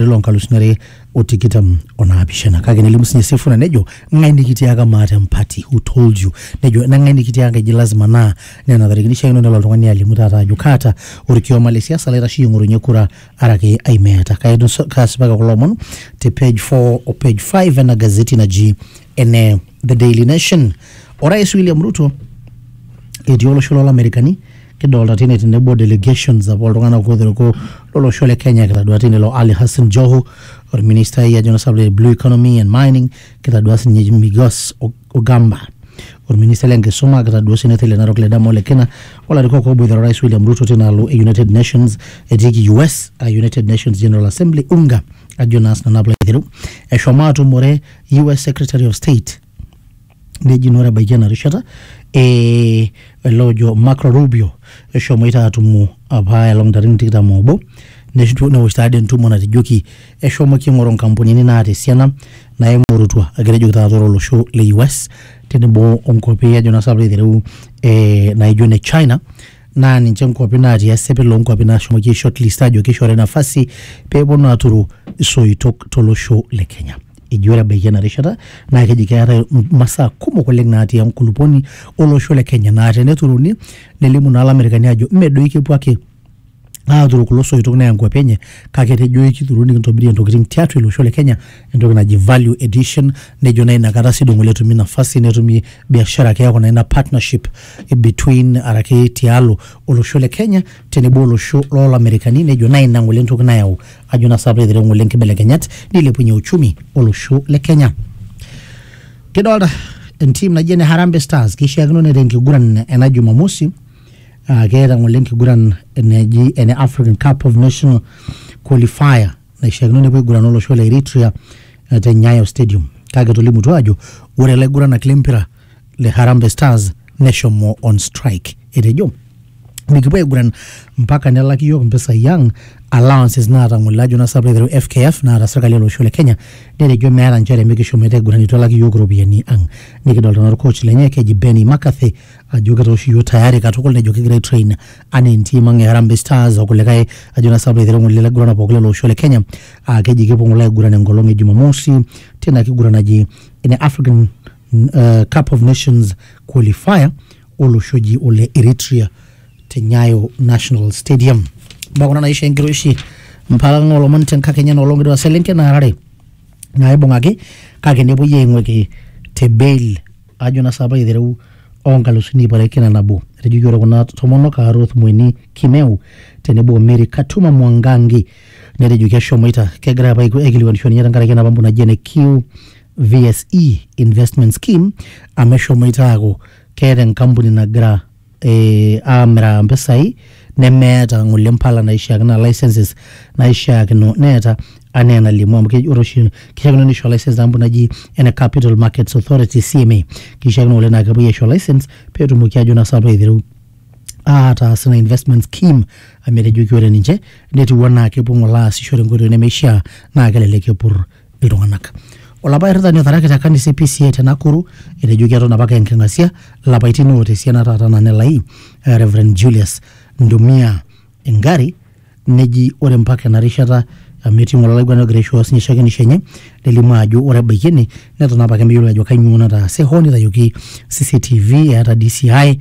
lelo nkalusuni are o tikitam o naapishana kake nelimu sinye Sifuna nejo ng'ae nikitiaka maata empati who told you nejo nang'ae nikitiaka eji lazima naa nena tarikini ishiakino nelo oltung'ani alimu taata ajo kaata orkioma le siasa laitasheyie ing'orunye kura araki ai meeta Kaetu- kaasipaki kulo omon te page 4 o page 5 ena gazeti naji ene The Daily Nation. Orais William Ruto etii olosho lolamerikani kidolta tine tenebo delegations apa oltung'anak otereko lolosho le Kenya kitadua tine lo Ali Hassan Joho orministai ajo na sababu blue economy and mining kitadua sinye Migos O- Ogamba orministai lenkisuma kitadua sinye le Narok le Dama Ole Kina olarikok oboitare orais William Ruto tinaalo e United Nations etiiki US a United Nations General Assembly UNGA ajo naa sinanu aplo aiteru eshomo atumore US Secretary of State neji naa ore ebaiki ena rishata eh, ele ojo Marco Rubio eshomoita atumo apa elong ntarikini tikitam oobo neshu- newosh taadi entumo natejoki eshomoki aing'oru nkampunini naata esiana naimurutua egira ejoki taata ore olosho le US tenebo onkuapi ajo naa sinanu piilo aitereu eh, naijo ne China naa ninche nkuapi naatii esipil oonkuapi naashomoki aishortlist aajo keishori nafasi pee eponu aaturu isoitok tolosho le Kenya. Eji ore ebaiki ena rishata naa keji keetae masaa kumok oleng naatii enkulupuoni olosho le Kenya naa teneturuni nelimu naa Ilamerikani aajo mme doi kepuo ake aaturu kulo soitok neya nkuapi enye kake etejo eikituru nikintobirie ntokitin tiatua ele osho le Kenya entoki naji value addition nejo naa inakata sii duo ng'ole etumi nafasi netumi biashara keeku naa ina partnership between araki tialo olosho le Kenya tenebo olosho lolamerikani nejo naa ina ng'ole entoki nayau ajo naa sape aitereu ng'ole nkibelekenyat nilepunye uchumi olosho le Kenya kidolta entim naji ene Harambee Stars kishiakino neeta enkiguran ena Jumamosi uh, keeta ng'ole enkiguran eneji ene African Cup of National Qualifier naishiakino nepuo aigurana olosho le Eritrea eh, te Nyayo Stadium kake etolimutuo aajo ore laiguranak lempira le Harambee Stars neshomo on strike. Etejo mikipuo aiguran mpaka nelaki yiok mpisai ang allowances naatang'ole ajo nasapuk aiteru FKF naata serkali olosho le Kenya netejo meeta nchere mikishomoita aiguran eitu elaki yiok iropiyiani ang. Nikidolta naa orcoach lenye keji Benny McCarthy ajo kitooshi yiok tayari katukul nejo kigira aitrain anaa entim ang e Harambee Stars okulikae ajo naa sababu eitereu ng'ole laiguranak pooki lele osho le Kenya aa keji kepuo ng'ole aiguran enkolong e Jumamosi tina kiguran naji ene African uh, Cup of Nations qualifier olosho oji ole Eritrea te Nyayo National Stadium. Mbaa kuna naisho enkiroshi mpaka ng'o olomon tenkakenya enoolong etua selenken naarare naaibung'aki kake nepuoi aing'ueki te bail ajo naa sapa aitereu o nkalusuni iip are kila nabo. Etejoki ore kuna tomonok aa Ruth Mweni Kimeu tenebo o Mary Katuma Mwangangi netejoki eshomoita kegira apa aikilikuanisho ninye tenkaraki ena pampu naji ene QVSE investment scheme amu eshomoita aaku keeta enkampuni nagira ee aamiraa mpisai nemeeta ngole mpala naishiakino ashu licenses naishiakino neeta anaa enalimu amu keji ore oshi kishiakino nisho license enkampuni naji ene capital markets authority CMA kishiakino ngole naa kepuoi aisho license petumoki ajo naa sinanu aiteru ataas ina investment scheme amu etejoki ore ninche netiu anaa kepuo ngole aasisho tenkoitoi nemeishia naa kelelek epur. iltung'anak. Olapa airitani otharaki te kanisa e PCA te Nakuru etejo keton apake enking'asia lapaitin oota esiana taata nanelai eh, Reverend Julius Ndumia engari neji ore mpaka ena rishata amu etii ng'ole olaiguanani ogira aishooyo sinye shakenisho enye nelimu ajo ore ebaiki ene neton apake meyiolo ajo kainyoo nataase hoo nitayioki CCTV eeta DCI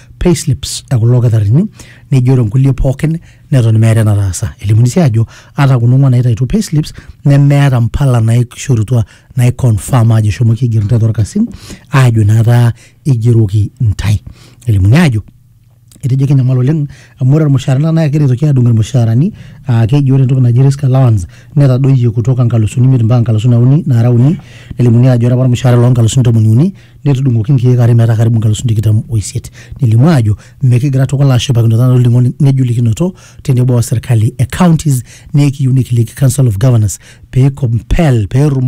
payslips e kulo kitarrini nejo ore nkulie pookin neton meeta enataasa elimuni sii ajo ata kuna ong'uan naitaituo payslips nemeeta mpala naishorutua naiconfirm ajo eshomoki aiger ntae torkasin aajo naata igeroki ntae elimuni ajo etejo kenyamal oleng amu ore irmushaarani naa kegira aitoki adung irmushaarani aa keji ore entoki naji risk allowance netadoyie kutoka nkalusuni imiet mpaka nkalusuni uni naara uni nelimuni ajo ore apa ormushaara loo nkalusuni tomoni uni netudung'oki nkiek are metaa karibu nkalusuni tikitam o isiet. Nelimu aajo mekigira tukul aashipakino taata olning'o ng'ejulikinoto tenebo o serkali e counties naa ekiyieu nikiliki Council of Governors pee compel pee